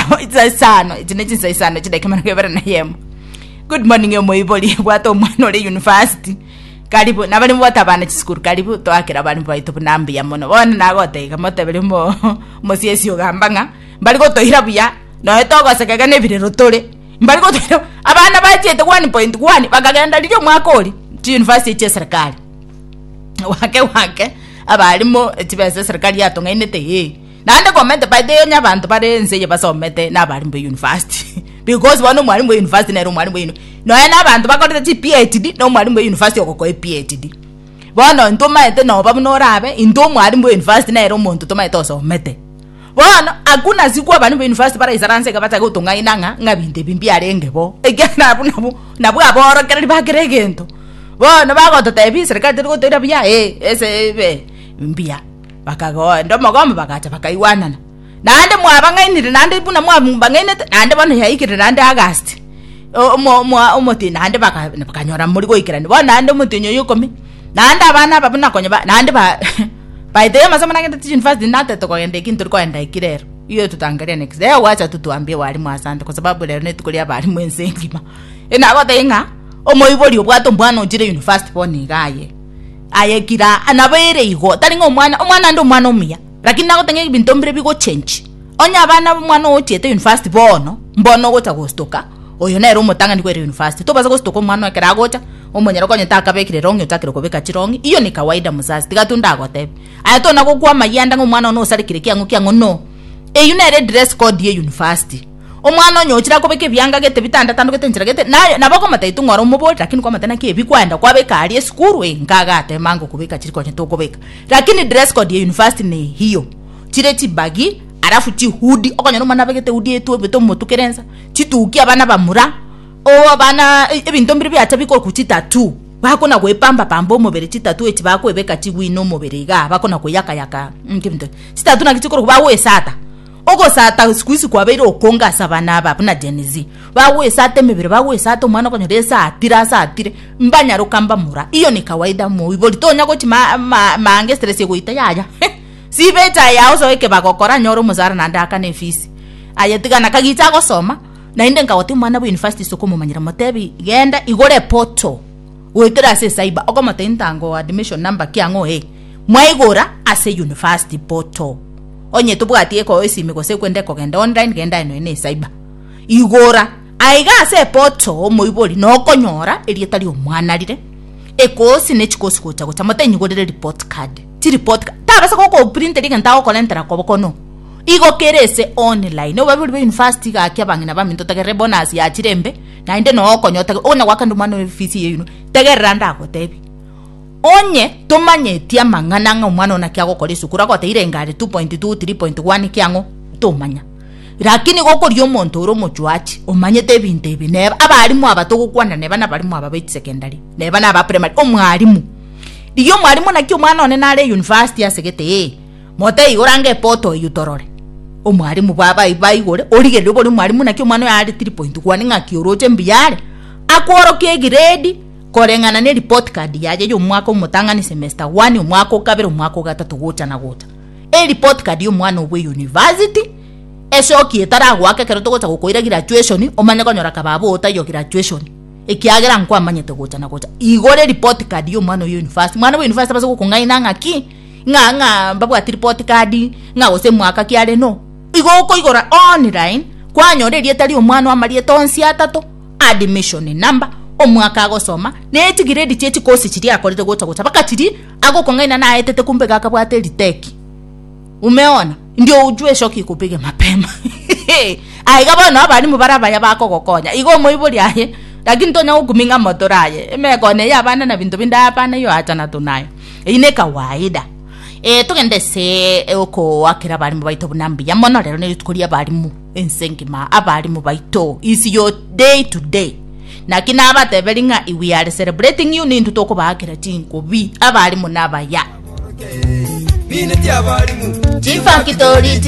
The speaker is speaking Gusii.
Amo insa isano echi ne chinsa isano echi dakika emerongo ebere na yemo good morning omoibori bwata omwana ore university karibu nabari bwata abana chisukuru karibu twakera abari baito buna mbuya mono bono nagotega motebere mo mosiesi ogamba ng'a mbari gotoira buya noe togosekega na ebirero tore mbari gotoira abana bachete one point one bakagenda riria omwaka ori chi university chia eserekari wake wake abarimo chibesa eserekari yatong'ainete ee Naende komenta baito eyo onye abanto bare ense eye basomete na abarimu be university because bono omwarimu bwe university nere omwarimu bwe uni- nonya na abanto bakorete chi PHD na omwarimu bwe university ogokoe PHD bono intwe omaete noba buna orabe intwe omwarimu bwe university nere omonto tomaete osomete bono hakuna siku abarimu be university baraisaranse iga bachake gotong'aina ng'a ng'a binto ebi mbiarenge bo ekiagera abwo nabwo nabwo aborokereri ba kera egento bono bagototebia eserikali terigotoira buya ee ese ebe mbuya. Bakagoenda omogomba bagacha bakaigwanana. Naende mwabang'ainire naende buna mwabang'ainete naende bono yaikire naende August o- omo- omo- omotienyi naende baka- bakanyora mori goikerania bono naende omotienyi oyo ikomi naende abana aba buna konya ba naende ba baetei amasomo nagende chiuniversity nate tokogenda ekio ntorikoenda ekio rero igo ototangerie next year gwacha totuambie abalimu asante kwa sababu rero netuko ria abalimu ense engima e nagotebie ng'a omoibori obwate omwana ochire university bono iga aye Aye kira nabo ere igo, tari ng'a omwana, omwana ande omwana omuya, lakini nagoteba ng'a ebinto mbire bigochenchi. Onye abana omwana ogochiete university bono, mbono ogocha gostoka, oyo nere omotang'ani kwere university, tobasa gostoka omwana ekero agocha, omonyene okonyete akabekire long'i ochakire kobeka chirong'i, iyo ni kawaida mzazi, tiga tu ndagotebe. Aye tona gokwa amayia ande ng'a omwana one osarekire kiang'o kiang'o, no. Eyio nere dress code ya university. Omwana onye ochire akobeka ebianga gete bitanda atandogete enchera gete naye nabo okomotetu ng'ora omoborie lakini kwamate naki ebi kwaenda kwabeka aria esukuru eh nka agate emanga okobeka chiri konya tokobeka lakini dress code ya university ne hiyo chire chibagi alafu chi hoodie okonyora omwana abegete hoodie etwobete omotukere ensa chituki abana bamura oh abana ebinto mbire biacha bikoku chi tattoo bakona goepamba pamba omobere chi tattoo echi bakoebeka chiwine omobere igaa bakona koyaka yaka nki ebinto ebi chi tattoo naki chikoroku bagoesata. Ogosata siku hizi kwabeire okonge ase abana aba buna Gen Z. Bagwesata emebere, bagwesata omwana okonyora esatire asatire mbanyaroka mbamura. Iyo ni kawaida moibori tonya gochi ma ma maanga estress egoita yaya he sibeti aye aosoe ekebago okore anyore omosara naende aakane efees aye tiga na kagicha agosoma naende nkagotebi omwana bwa university sokomomanyera motebi genda igora epoto goetera ase cyber okomotebia ntango oo admission number ki ang'o ee mwaigora ase university portal onye tobwati eko esimi gose kwende kogenda online genda enoe ne cyber igora aiga ase portal omoibori no konyora erieta ria omwana rire ekosi ne chikosi gocha gocha motebie nyigorere report card chi report card tabasa go ko print eri genta gokorentera kobo kono igo kere ese online obabibori bwa university gaki abang'ina baminto togerere bonus ya chire mbe. naende noo okonyotake ogwo nagwakande omwana oye fees eye yuno tegerera ndagotebi onye tomanyeti amang'ana ng'a omwana oyo naki agokora esukuru agoteire engari 2.2 3.1 ki ang'o tomanya rakini igo okoria omonto ore omochuachi omanyete ebinto ebi neba abalimu aba togokwana neba nabalimu aba baiti secondary neba naba primary omwalimu rigia omwalimu naki omwana one nare university asegete eeh. Motaigora anga epoto eyio torore. Omwalimu baba ai baigore origereri obori omwalimu naki omwana oyo are three point one ng'aki oroche mbuya are akworokia egrade koreng'ana ne report card yaye ya omwaka omotang'ani semester one omwaka okabere omwaka ogatato gocha na gocha ereport card ya omwana obwe university esoki etaragoaka ekero togocha gokoira graduation omanye konyora kaba abwo otaiyo graduation ekiagera nkwamanyete gocha na gocha igora ereport card ya omwana oyo ya university mwana bwa university abase gokong'aina ng'aki. ng'a ng'a mbabwati report card ng'a gose mwaka ki are no igo okoigora online kwanyora erieta ria omwana oye amarieta onsi atato admission number omwaka agosoma na echi grade chie chi course chiria akorete gocha gocha mpaka chiria agokong'aina naetete kumbe iga akabwate eriteki umeona ndio ujue shoki ikupige mapema aye iga bono abalimu baria abaya bakogokonya igo omoibori aye lakini tonya gokumia ng'a motoraye emegoko eye abana na binto binde hapana iyo achana tu naye. Eyio ne kawaida. Eh, togende ase eh, okoakera abarimu baito buna mbuya mono, rero nerio tokoria abarimu ense ngima, abarimu baito is your day to day. Naki nabateberi ng'a if we are celebrating you nintu tokobaakera chinkubi abarimu nabaya. Mineti abarimu Chifactory